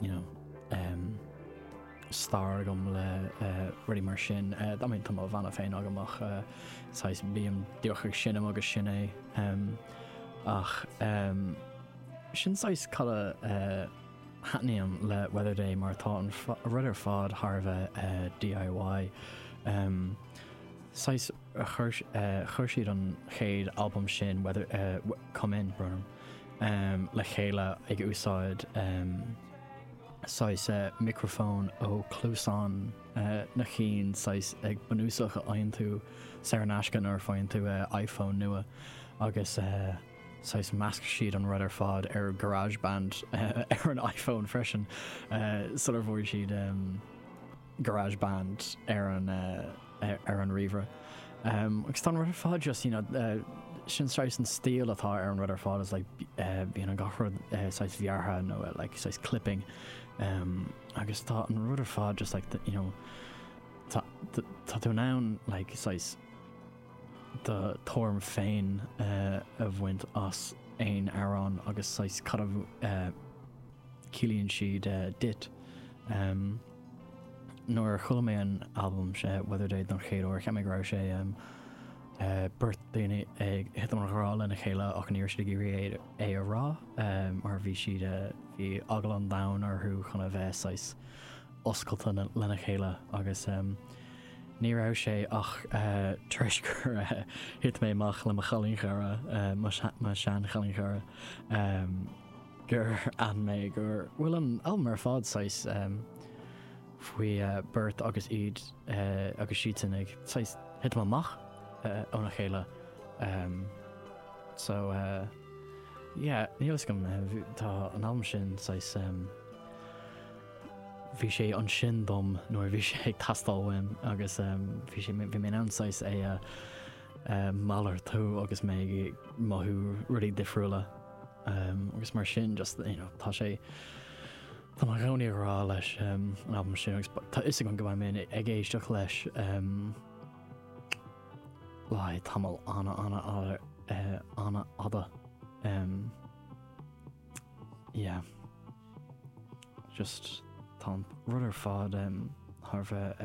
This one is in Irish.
you know, um, stair agam le uh, rudaí mar sin. Uh, I mean, tá mo bhanna féin agam ach uh, saghas bím difriúil sin am agus sin é. Um, ach um, sin saghas cá uh, n-aithním le Weather Day mar tá an rud ar fad thar a bheith uh, DIY. Um, saghas uh, chur, uh, chur siad an chéad album sin, Weather, uh, Come In, Burnham. le chéile ag úsáid saghas micreafón ó chluasáin na cinn saghas ag bunúsach a fhaigheann tú saor in aisce nuair a fhaigheann tú iPhone nua agus saghas mheasc siad an rud ar fad ar garage band ar an iPhone freisin sular bhfuair siad um, garage band ar an ar an ríomhaire agus tá an rud ar fad just you know sin saghas an stíl atá ar an rud ar fad is like bíonn an gach rud saghas bearrtha nó like saghas clipping agus tá an rud ar fad just like you know tá tá tú in ann like saghas do thuairim féin a bhaint as aon amhrán agus saghas cad a chiallaíonn siad duit. Nuair a chuala mé an albam Weather Day don chéad uair, cheap mé go raibh sé beirt daoine ag thitim i ngrá lena chéile ach ní raibh siad ag iarraidh é a rá mar bhí siad, bhí eagla an domhain orthu chun a bheith saghas oscailte lena chéile agus ní raibh sé ach tar éis gur thit mé amach le mo chailín cara, mo sheanchailín cara. gur fhan mé go bhfuil an albam ar fad saghas faoi beirt agus iad agus siadsan ag saghas thitim amach óna chéile so yeah níl fhios agam tá an albam sin saghas bhí sé ansin dom nuair bhí sé ag teastáil uaim agus bhí sé bhí mé in ann saghas é a mhalartú agus mé ag mothú rudaí difriúla. agus mar sin just you know tá sé tá mé i gcónaí i ngrá leis an albam sin agus tá fhios agam go mbeidh mé ag éisteacht leis le haghaidh tamall ana ana ana fhada yeah just tá an rud ar fad thar a bheith